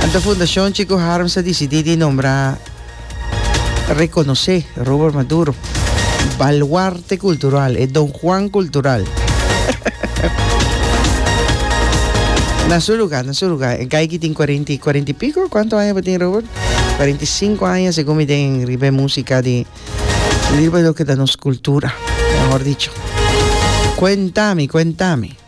Anto Fundashon Chico Harms a disidí di nombrá rekonosé Robert Maduro balwarte kultural, e Don Juan kultural. Na su lugar, na su lugar. E gaiky tin 40, 40 y pico. Cuánto años tin Robert? 45 años según mi den ribe música di ribe lo que da nos cultura, mejor dicho. Cuéntame, cuéntame.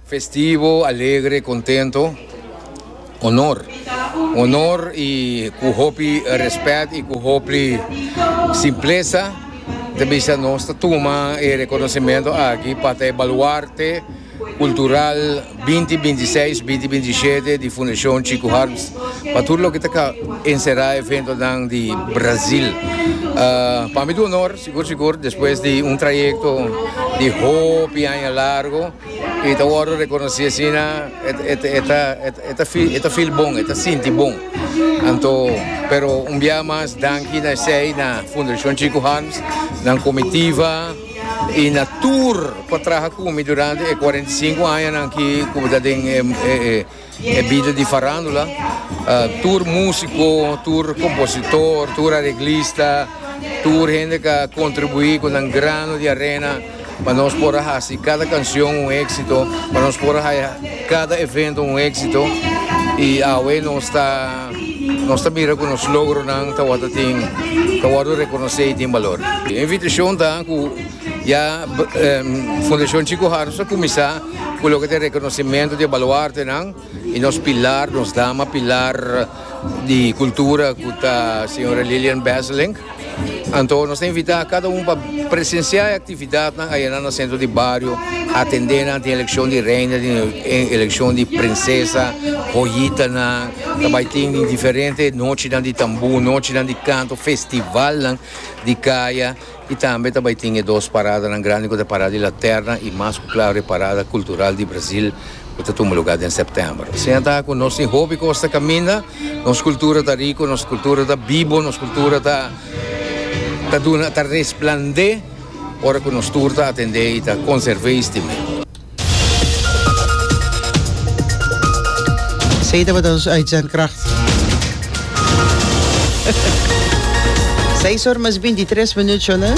Festivo, alegre, contento, honor. Honor y cu hopi respet y cu hopli simpleza ta bisa nos ta tuma e reconocimento aki pa ta e baluarte cultural binti binti i seis, binti binti i shete di Fundacion Chico Harms pa tur loke ta encera eventonan di Brazil. Pa mi ta honor sigur sigur despues di un trayecto di hopi aña largo. I ta wòrdu rekonosí asina e ta feel bon, e ta sinti bon. Anto pero un biaha mas danki na esei na Fundacion Chico Harms, nan komitiva i na tur pa traha ku mi durante e kuarenta i sinku añanan aki ku mi ta den e. E bida di farandula, tur musiko, tur kompositor, tur areglista, tur hende ku a kontribuí ku nan grano di arena pa nos por a hasi kada kanshon un éksito, pa nos por a haña kada evento un éksito. I awe nos ta nos ta mira ku nos logronan tabata tin ta wòrdu rekonosé i tin balor. E invitashon ta ku ya Fundashon Chiko Harms a kuminsá. Cu loke ta e reconocimento di e baluartenan y nos pilar, nos dama pilar di cultura cu ta Sra. Lilian Besselink. Anto nos ta invita cada un pa presencia e actividadnan ayera na Centro di Bario, atende nan den eleccion di Reina, den eleccion di Princesa, Joyitanan, ta bay tin di diferente nochinan di tamboer, nochinan di canto, festivalnan di caya. I tambe ta bai tin e dos paradanan grandi ku ta Parada di Laterna i mas ku klaro e Parada Kultural di Brazil ku ta tuma lugá den sèptèmber. Siña ta ku nos tin hopi kos ta kaminda, nos kultura ta riku, nos kultura ta bibu, nos kultura ta ta duna ta resplandé ora ku nos tur ta atendé i ta konserv'é i stim'é. Zij tabata ons uitzendkracht. Seis horas mas 23 minutos, ¿no?